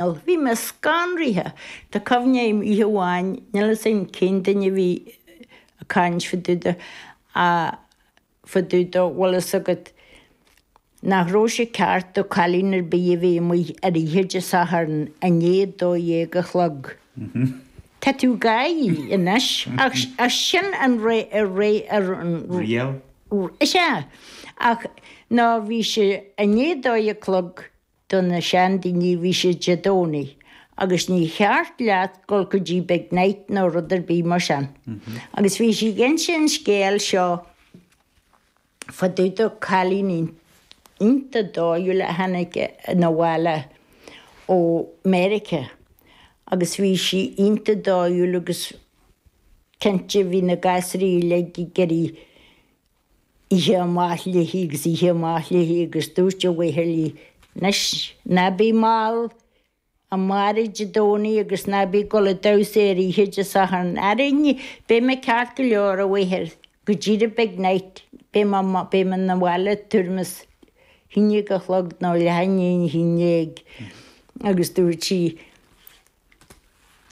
Bhí mé scanraithe. Tá cuimhne a'm oíche amháin, níl 'fhios a'm cén duine a bhí a' caint fá dtaobh de, a, fá dtaobh de, bhfuil 'fhios agat, nach raibh sé ceart do cailín ar bith a bheith amuigh ar oíche Dé Sathairn i ndiaidh dó dhéag a chlog. Tá tú ag gáire anois. Ach, ach sin an ré, ré, ar an, Riail? is ea. Ach, no, bhí sé i ndiaidh dó dhéag a chlog Do na seandaoine bhí sé Dé Domhnaigh agus níor cheart leat dhul go dtí big night nó rud ar bith mar sin. Agus bhí sí ag inse an scéal seo fá dtaobh de cailín iontach dóighiúil a tháinig na bhaile ó Mheiriceá agus bhí sí iontach dóighiúil agus cinnte bhí na gasraí uilig ag iarraidh Oíche amach léi agus oíche amach léi agus dúirt a mhaothar leí, Nois, ná bí mall, amárach Dé Domhnaigh agus ná bí ag dul ag damhsa ar oíche Dé Sathairn. Ara ní, beidh mé ceart go leor, a mháthair, go dtí the big night, beidh mé, beidh mé na bhaile tuairim is a haon déag a chlog nó leath i ndiaidh a haon déag. Agus dúirt sí.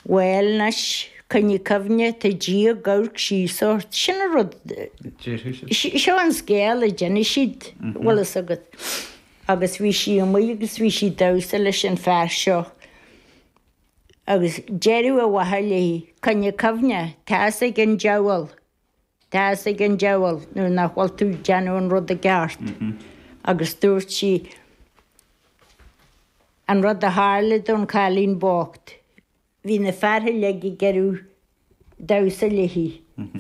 Bhuel, anois, coinnigh cuimhne, tá Dia ag amharc síos ort, sin an rud a déarfadh siad. Seo an scéal a d'inis siad, bhfuil fhios agat. Agus bhí sí amuigh agus bhí sí ag damhsa leis an fear seo agus deireadh a mháthair léi, coinnigh cuimhne, tá's ag an diabhal. Tá's ag an diabhal nuair nach bhfuil tú ag déanamh an rud i gceart. Agus dúirt sí an rud a tharla don chailín bocht. Bhí na fear uilig ag iarraidh damhsa léi,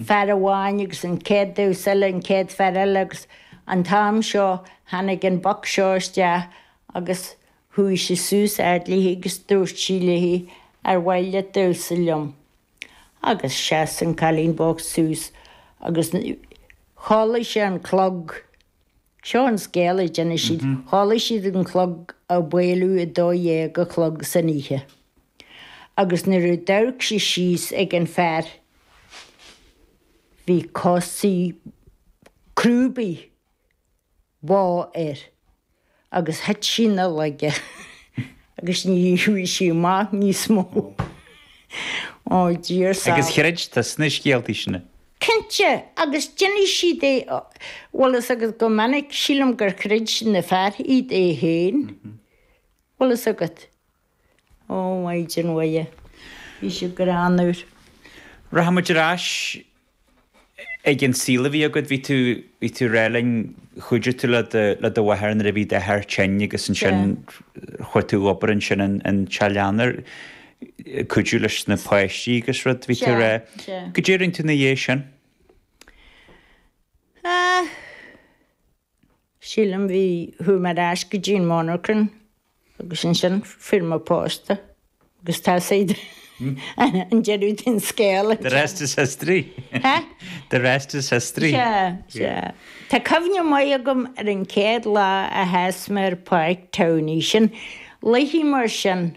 fear amháin agus an chéad damhsa eile an chéad fear eile agus an t-am seo tháinig an boc seo isteach agus chuaigh sé suas fhad léi agus dúirt sé léi, ar mhaith leat damhsa liom? Agus sheas an cailín bocht suas agus chuala sí an clog. Seo an scéal, a d'inis siad, chuala siad an clog ag bualadh a dó dhéag a chlog san oíche. Agus nuair a d'amharc sí síos ag an fear, bhí cosa crúbaí ba air agus thit sí ina laige agus ní raibh sí maith níos mó. Ó Dia ár sábháil. Agus chreid tusa na scéaltaí sin? Cinnte, agus d'inis siad é, bhfuil fhios agat go minic, sílim gur chreid na fear iad é féin, bhfuil fhios agat. Ó Mhaighdean Mhuire, bhí siad greannmhar. Rachaidh muid ar ais ag an saol a bhí agat. Bhí tú, bhí tú ag rá linn, chuidigh tú le do, le do mháthair nuair a bhí d'athair tinn agus ansin chuaigh tú ag obair ansin in, in Teileann, ag cuidiú leis na páistí agus rud, bhí tú ag rá. Goidé a rinne tú ina dhiaidh sin? Sea. Sílim, bhí, chuaigh mé ar ais go dtí an monarchan agus ansin fuair mé pósta agus tá siúd an deireadh den scéal anseo. The rest is history. Hea? The rest is history. Sea, sea. Tá cuimhne maith agam ar an chéad lá a sheas mé ar pháirc Towney, sin, cluichí mar sin.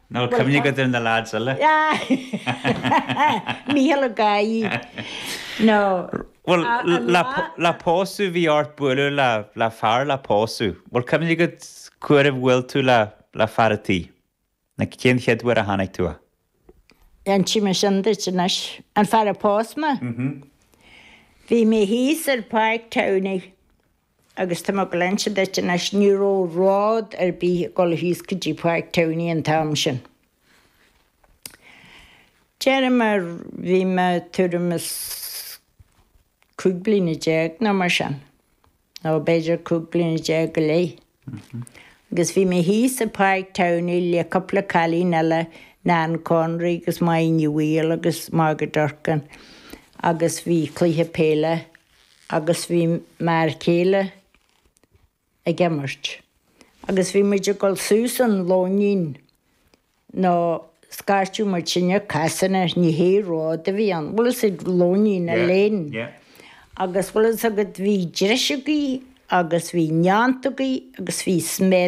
Tá cuimhne agat ar na leaids eile. Mícheál ag gáirí, Nó. Bhuel, le pósadh bhí ort bualadh le, le fear le pósadh. Bhuel, cuimhne agat cá huair a bhuail tú le, le fear an tí. Nó cén chéad uair a tháinig tú a. Inseoidh mé sin duit anois. An fear a phós mé? Bhí mé thíos ar Pháirc Tamhnaigh. Agus tá mé ag inse duit anois, ní raibh ród ar bith ag dul thíos go dtí Páirc Towney an t-am sin. Deirim, ah bhí mé tuairim is cúig bliana déag nó mar sin, nó b'fhéidir cúig bliana déag go leith. Agus bhí mé thíos i Páirc Towney le cúpla cailín eile, Nan Conry agus Máire Ní Bhaoill agus Margaret Durcan, agus bhí cluiche peile agus bhí m'fhear céile ag imirt agus bhí muid ag dul suas an lóinín nó scairteadh muid sinne casán air, ní hé ród a bhí ann, bhfuil fhios a'd, lóinín a lane, agus bhfuil fhios agat bhí driseogaí agus bhí neanntógaí agus bhí sméar.